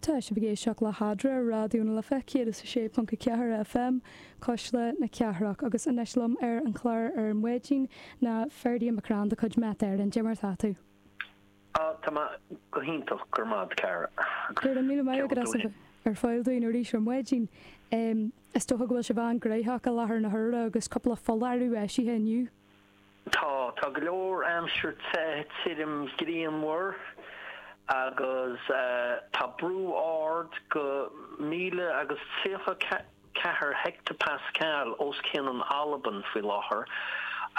Tá sibh ag éisteacht le hAdhradh ar Raidió na Life 106.4 FM, Cuisle na Cathrach, agus anois liom ar an chlár ar maidin ná Ferdia McCrann de chuid Met Éireann. Dia mar atá tú? Ah, tá mé go hiontach, go raibh maith agat, a chara. Go raibh míle maith agat as a bheith ar fáil dúinn arís ar maidin. Is dócha go bhfuil sibh an-ghnóthach i láthair na huaire agus cúpla foláireamh eisithe inniu. Tá, tá go leor aimsir te tirim grianmhar agus tá brú ard go 1034 heicteapascal os cionn an Albain faoi láthair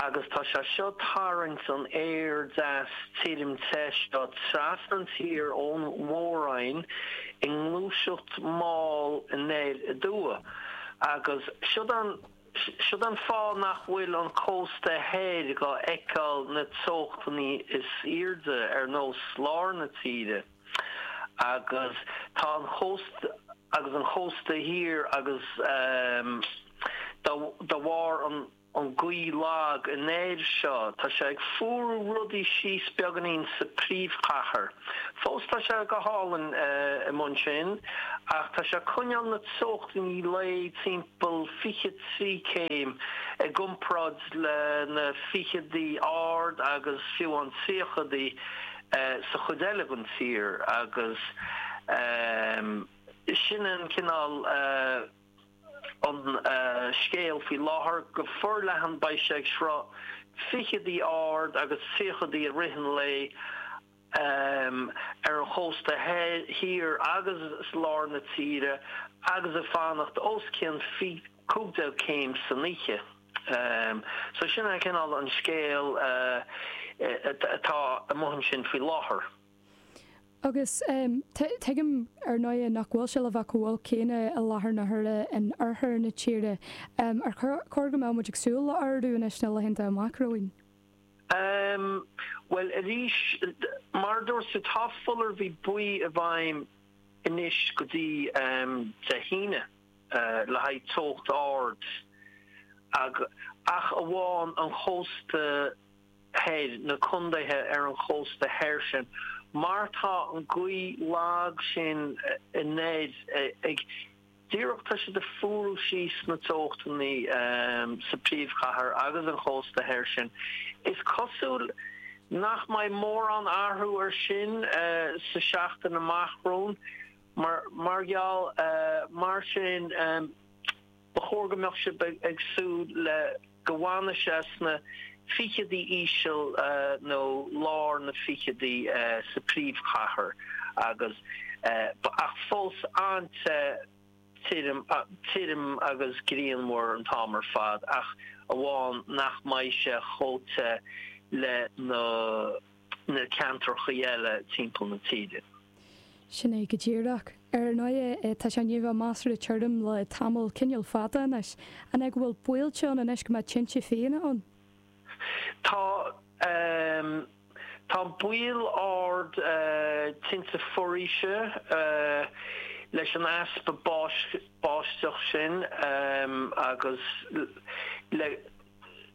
agus tá sé seo tarraingt an aeir deas tirim te seo trasna an tír ón mhór-roinn i ngluaiseacht mall anoir aduaidh agus sin an Sin an fáth nach bhfuil an cósta thoir ag feiceáil na teochtannaí is airde ar nós lár na tíre agus tá an chósta agus an chósta thiar agus de bharr an gaoth lag anoir seo tá sé ag fuaradh rudaí síos beagáinín sa príomhchathair. Fós tá sé go hálainn amuigh ansin ach tá sé coinneáil na teochtannaí lae timpeall 23 céim, i gcomparáid le na fichidí ard agus fiú an tríochaidí sa chuid eile den tír agus sin an cineál an scéal faoi láthair. Go forleathan beidh sé ag sroicheadh fichidí ard agus tríochaidí i rith an lae ar an chósta thiar agus i lár na tíre agus ag fanacht os cionn cúig déag céim san oíche. So sin an cineál an scéal atá amuigh ansin faoi láthair. Agus tuigim ar ndóigh nach bhfuil sé le bheith chomh holc céanna i láthair na huaire in oirthear na tíre. Ar chóir go mbeadh muid ag súil le ardú anois sna laethanta amach romhainn? Em, bhuel arís, mar a dúirt tú, tá foláireamh buí i bhfeidhm anois go dtí, em, Dé hAoine, eh, le haghaidh teocht ard agus, ach amháin an chósta thoir, na contaetha ar an chósta thoir sin mar tá an gaoth lag sin anoir ag, Díreach tá sé ag fuarú síos na teochtannaí sa príomhchathair agus an chósta thoir sin. Is cosúil nach mbeidh mórán athrú ar sin sa seachtain amach romhainn mar mar gheall mar sin ba chóir go mbeadh sibh ag súil le go bhfanfaidh sé sna ficheadaí íseal nó lár na ficheadaí sa príomhchathair agus ach fós an-te, tirim agus grianmhar an t-am ar fad ach amháin nach mbeidh sé chomh te le na na ceantracha eile timpeall na tíre. Sin é go díreach. Ar ndóigh, tá sé i ndiaidh a bheith measartha tirim le tamall cineál fada anois. An é go bhfuil baol ann anois go mbeadh tinte fiáine ann? Tá, tá baol ard tinte foraoise leis an easpa báis, báisteach sin agus le,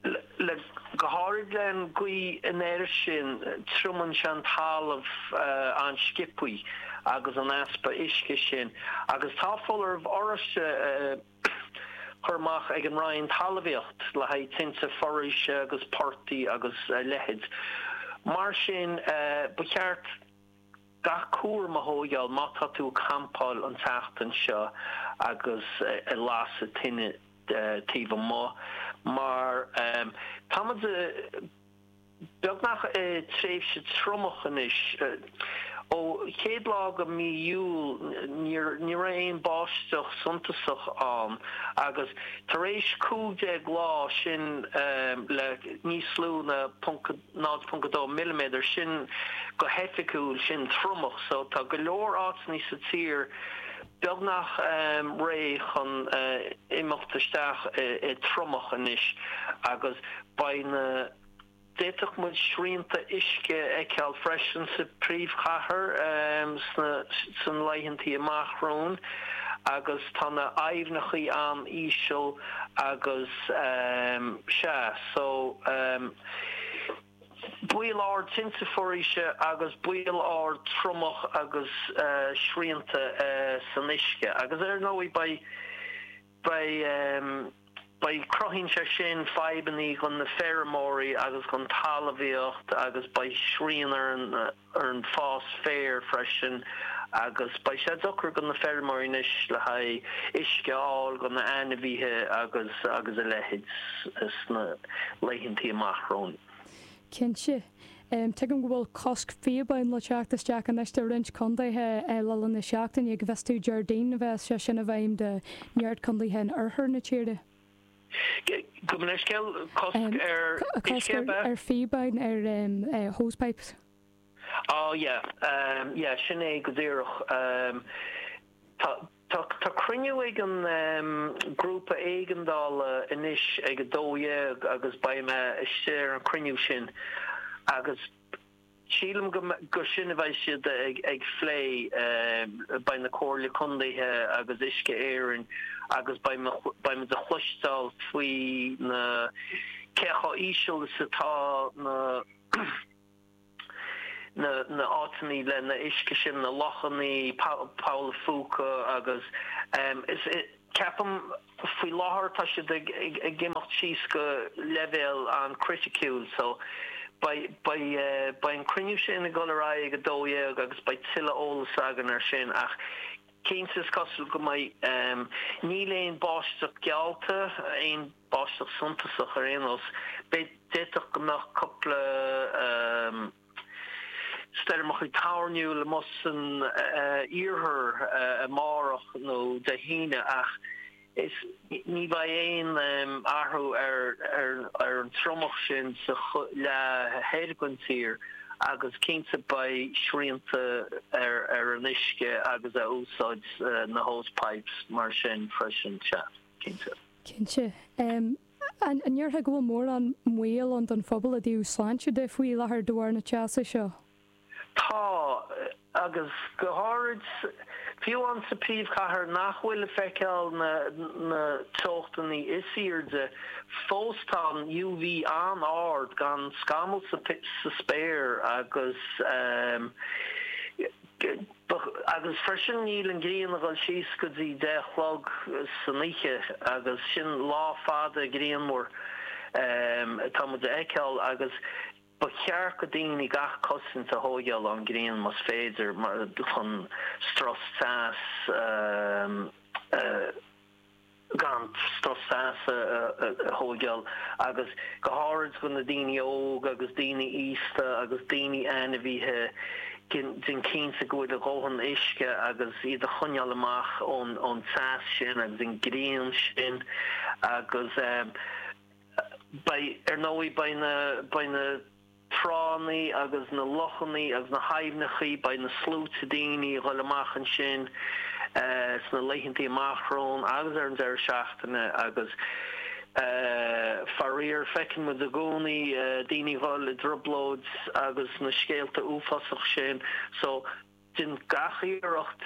le go háirid le an gaoth anoir sin, triomaíonn sé an talamh an-sciobtha agus an easpa uisce sin agus tá foláireamh oráiste curtha amach ag an Roinn Talmhaíocht le haghaidh tinte foraoise agus portaigh agus a leithéid. Mar sin ba cheart. Gach cúram a thóigheáil má tá tú ag campáil an tseachtain seo agus ag lasadh tine taobh amuigh mar tá muid beagnach i tréimhse triomach anois. Ó chéad lá de mí Iúil ní raibh aon báisteach suntasach ann agus tar éis cúig déag lá sin le níos lú na 0.2 milliméadar, sin go hoifigiúil, sin triomach, so tá go leor áiteannaí sa tír beagnach réidh chun imeacht isteach i triomach anois agus beidh na, d'fhéadfadh muid srianta uisce a fheiceáil freisin sa phríomhchathair sna laethantaí amach romhainn agus tá na haibhneachaí an-íseal agus, sea, so. Baol ard tinte foraoise agus baol ard triomach agus srianta san uisce agus ar ndóigh beidh beidh beidh cruthaíonn sé sin fadhbannaí dhon na feirmeoirí agus dhon talmhaíocht agus beidh srian ar an ar an fás féir freisin agus beidh sé deacair go na feirmeoirí anois le haghaidh uisce a fháil go na ainmhíthe agus agus a leithéid sna laethantaí amach romhainn. Cinnte. Tuigim go bhfuil cosc píobáin le teacht isteach anois do roinnt contaetha le linn na seachtaine. An bhfuil a fhios agat, Déardaoin a bheas sé sin i bhfeidhm do neart contaetha in oirthear na tíre. Gabh leithscéal, cosc ar uisce a bheith. ar phíobáin, ar hosepipes. Á yeah, yeah sin é go díreach. Tá cruinniú ag an ngrúpa éigeandála anois ag a dó dhéag agus beidh mé istigh ar an chruinniú sin agus. Sílim gurb é sin a bheidh siad a phlé. Beidh na Comhairle Contaethe agus Uisce Éireann agus beimid a chloisteáil faoi na cé chomh íseal is atá na na áiteannaí leis an uisce sin, na lochannaí, Poll a Phúca agus is. Ceapaim faoi láthair tá siad ag imeacht síos go leibhéal an-chriticiúil so beidh an cruinniú sin ag dul ar aghaidh ag 12 agus beidh tuilleadh eolais againn ar sin ach cinnte is cosúil go mbeidh, níl aon báisteach geallta, aon báisteach suntasach ar aon nós, d'fhéadfadh go mbeadh cúpla. stoirmeachaí toirniúil amuigh san iarthar amárach nó Dé hAoine ach ní bheidh aon athrú ar an triomach sin sa leath thoir den tír agus cinnte beidh srianta ar an uisce agus a úsáid na hosepipes mar sin freisin. Cinnte. Cinnte. An ndéarfá go bhfuil mórán baol ann don phobal i dtaobh sláinte de faoi láthair de bharr na teasa seo? Tá, agus go háirid fiú amháin sa phríomhchathair nach bhfuil ag feiceáil na na teochtannaí is airde fós tá an UV an-ard gan scamall sa sa spéir agus eh. Agus freisin níl an ghrian a dhul síos go dtí deich a chlog san oíche agus sin lá fada grianmhar atá muid a fheiceál agus ba cheart go daoine gach cosaint a thóigheáil ón ghrian más féidir mar chun strus teas a gan strus teasa a thóigeáil agus go háirid do na daoine óg agus daoine aosta agus daoine ainmhithe déan cinnte go bhfuil a dhóthain uisce agus iad a choinneáil amach ón teas sin agus an grian sin agus beidh ar ndóigh beidh na tránnaí agus na lochannaí agus na haibhneachaí, beidh na sluaite daoine a ghoil amach ansin sna laethantaí amach romhainn agus ar an deireadh seachtaine agus faraor feiceann muid i gcónaí daoine a ghoil i dtrioblóid agus na scéalta uafásach sin so Déan gach iarracht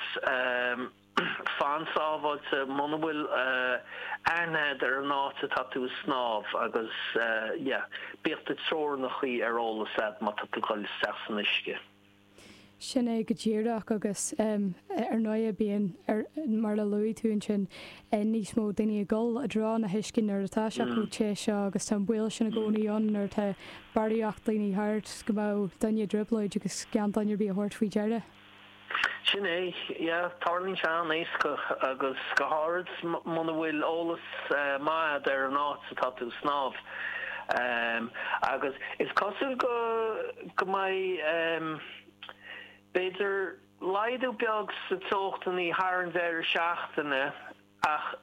fan sábháilte muna bhfuil aithne agat ar an áit atá tú ag snámh agus yeah, bíodh do theorainneacha ar eolas agat má tá tú ag dul isteach san uisce. Sin é go díreach agus ar ndóighe bíonn, mar a luaigh tú ansin, eann níos mó daoine ag dul i dtreo an uisce nuair atá sé chomh te seo agus tá an baol sin i gcónaí ann nuair atá barraíocht daoine thart go mbeadh duine i dtrioblóid agus gan duine ar bith a thabhairt faoi deara. Sin é, yeah, tarlaíonn sé an-éasca agus go háirid muna bhfuil eolas maith agat ar an áit atá tú ag snámh. Agus is cosúil go mbeidh b'fhéidir. Laghdú beag sa teochtannaí thar an deireadh seachtaine ach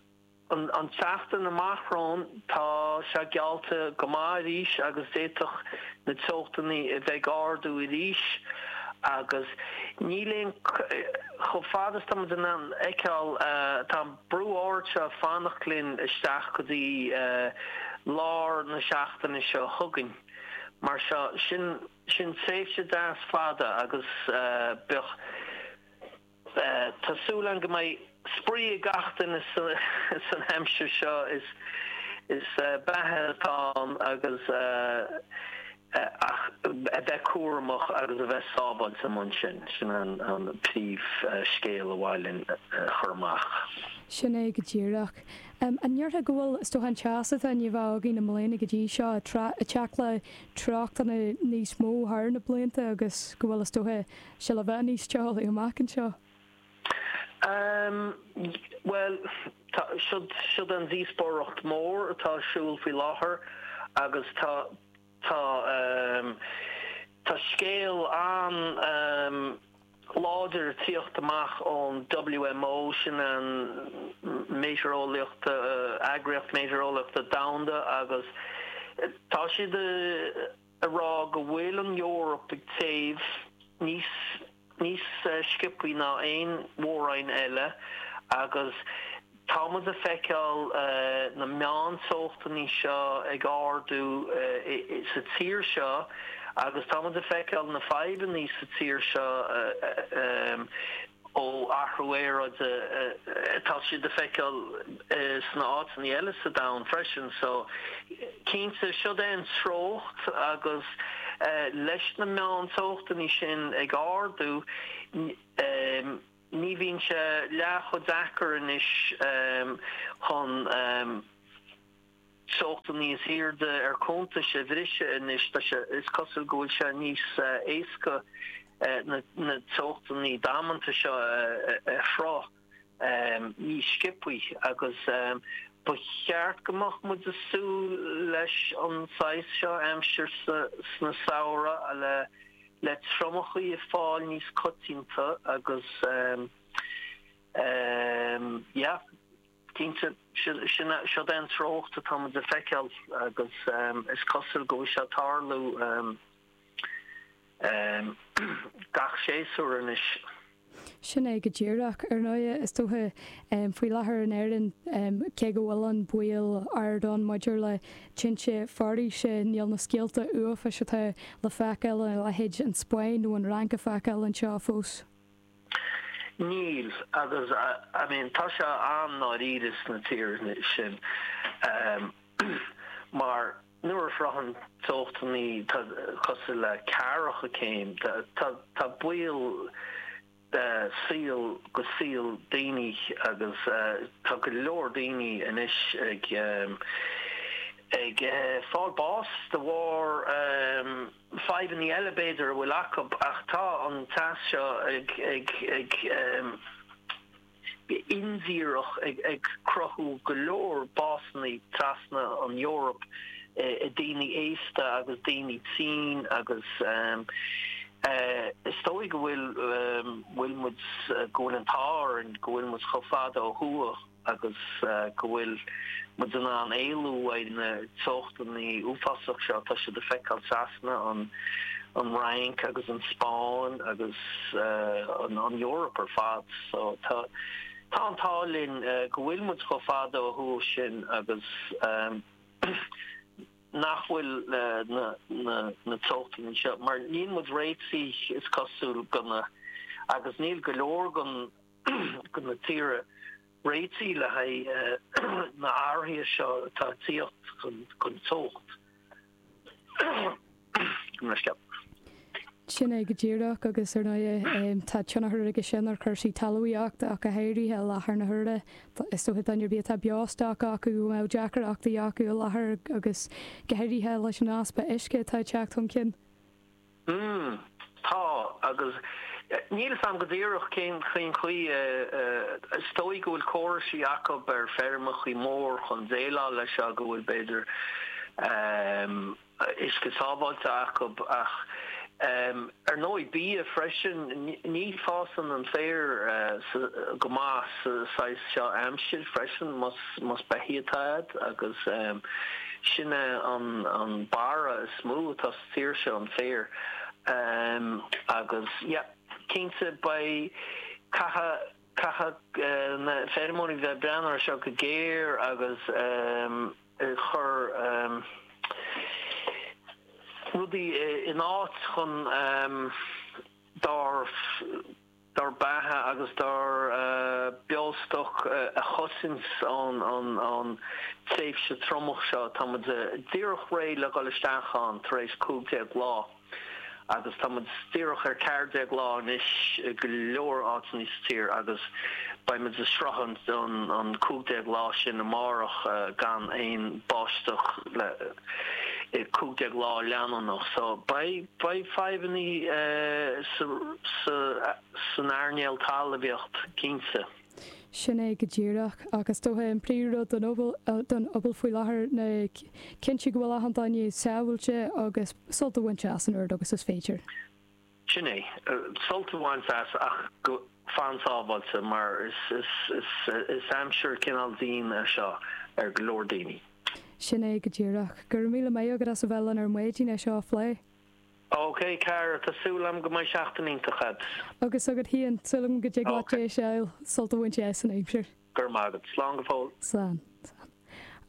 an tseachtain amach romhainn tá sé geallta go maith arís agus d'fhéadfadh na teochtannaí a bheith ag ardú arís agus níl aon, chomh fada is tá muid in ann feiceáil, tá an brú ard seo ag fanacht linn isteach go dtí lár na seachtaine seo chugainn. Mar seo, sin. Sin tréimhse deas fada agus beidh, tá súil agam go mbeidh spraoi ag gach duine san aimsir seo. Is beatha atá ann agus ach a bheith cúramach agus a bheith sábháilte amuigh ansin, sin an príomh scéal ab mhaith linn a chur amach. Sin é go díreach. An ndéarfá go bhfuil, is dócha, an teas atá ann i mbun óga na mbliana go dtí seo, a teacht le tráchtanna níos mó thar na blianta agus go bhfuil, is dócha, sé le bheith níos teo amach anseo. Bhuel, tá, siod an díospóireacht mór atá a siúl faoi láthair agus tá, tá, tá scéal an, láidir ag tíocht amach ón WMO, sin an meitéareolaíocht, Eagraíocht Meitéareolaíochta Domhanda, agus tá siad a rá go bhfuil an Eoraip ag téamh níos níos sciopthaí ná aon mhór-roinn eile agus. Tá muid a feiceáil na meánteochtannaí seo ag ardú sa tír seo agus tá muid a feiceáil na fadhbannaí sa tír seo ó athrú aeráide. Tá siad a feiceáil sna áiteannaí eile sa domhan freisin. So cinnte siod é an treocht agus leis na meánteochtannaí sin ag ardú, Ní bhíonn sé leath cho deacair anois chun teochtaí níos airde ar cuntas a bhriseadh anois. Tá sé, is cosúil go bhfuil sé níos éasca na teochtaí damanta seo a shroicheadh níos sciopthaí agus ba cheart go mbeadh muid ag súil leis an saghas seo aimsir sna samhraí le le triomachaí ag fáil níos coitianta agus yeah cinnte siod é an treocht atá muid ag feiceáil agus is cosúil go bhfuil sé ag tarlú gach séasúr anois. Sin é go díreach. Ar ndóigh, is dócha, faoi láthair in Éirinn, cé go bhfuil an baol ard ann maidir le tinte foraoise, níl na scéalta uafáis atá le feiceáil i leithéid an Spáinn nó an Fhrainc le feiceáil anseo fós. Níl, agus, I mean, tá sé an-dáiríre sna tíortha sin mar. Nuair a shroicheann teochtaí cosúil le ceathracha céim. Tá baol saol go saol daoine agus tá go leor daoine anois ag ag fáil bás de bharr fadhbannaí eile b'fhéidir a bhfuil acu ach tá an teas seo ag go hindíreach ag cruthú go leor básanna trasna an Eoraip i daoine aosta agus daoine tinn agus is dóigh go bhfuil bhfuil muid go bhfuil an t-ádh orainn go bhfuil muid chomh fada ó thuaidh agus go bhfuil muid in ann éalú uaidh na teochtaí uafásach seo atá siad ag feiceáil trasna an an Fhrainc agus an Spáinn agus an Eoraip ar fad. So, tá an t-ádh linn go bhfuil muid chomh fada ó thuaidh sin agus nach bhfuil na teochtaí anseo, mar níl muid réitithe, is cosúil, go na, agus níl go leor go na tíre réitithe le haghaidh na athraithe seo atá ag tíocht chun teacht. Sin é go díreach, agus ar ndóigh tá tionchar aige sin ar chúrsaí talmhaíochta ach go háirithe i láthair na huaire. Is dócha daoine ar bith atá beostoc acu go mbeadh deacrachtaí acu i láthair agus go háirithe leis an easpa uisce atá ag teacht chun cinn. Umm. Tá. Agus níl 'fhios a'm go díreach cén chaoi a, is dóigh go bhfuil córaisí acu ar feirmeachaí mór chun déileáil leis seo, go bhfuil b'fhéidir ehm, uisce sábháilte acu ach ehm, ar ndóigh bia freisin, ní fásann an féar sa, go maith sa saghas seo aimsir freisin más, más beithígh atá a'd agus ehm, sin é an, an barra is mó atá. sa tír seo an féar agus yeah cinnte beidh caithfidh na feirmeoirí bheith breathnú ar seo go géar agus chur rudaí in áit chun dár dár mbeatha agus dár beostoc a chosaint ón tréimhse triomach seo. Tá muid díreach réidh le dhul isteach ann tar éis 15 lá agus tá muid díreach ar 14 lá anois i go leor áiteannaí sa tír agus beidh muid ag sroichint an 15 lá sin amárach gan aon báisteach le 15 lá leanúnach so beidh fadhbanna san earnáil talmhaíocht cinnte. Sin é go díreach. Ach is dócha an príomhrud don phobal faoi láthair ná cinntiú go bhfuil achan duine sábháilte agus sult a bhaint as an oiread agus is féidir. Sin é. Sult a bhaint as ach go fan sábháilte mar is aimsir cineál dian é seo ar go leor daoine. Sin é go díreach. Go raibh míle maith agat as a bheith linn ar maidin é seo a phlé. OK, cara, tá súil agam go mbeidh seachtain iontach agat. Agus agat féin. Súil agam go dtig leat deis a fháil sult a bhaint as an aimsir. Go raibh maith agat. Slán go fóill. Slán. Slán.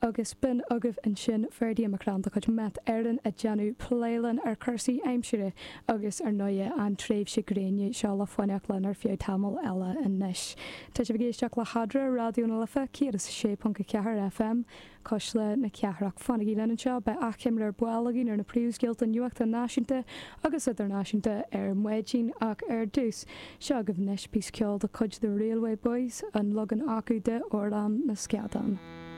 Agus b'in agaibh ansin Ferdia Mac Crann de chuid Met Éireann ag déanamh plé linn ar chúrsaí aimsire agus, ar ndóighe, an tréimhse gréine seo le fanacht linn ar feadh tamaill eile anois. Tá sibh ag éisteacht le hEadra ar Raidió na Life 106.4 FM. cuisle na cathrach. Fanaigí linn anseo, beidh achoimre ar ball againn ar na príomhscéalta nuachta náisiúnta agus idirnáisiúnta ar maidin ach ar dtús, seo agaibh anois píosa ceoil de chuid The Railway Boys, an leagan acu de 'Amhrán na Scadán'.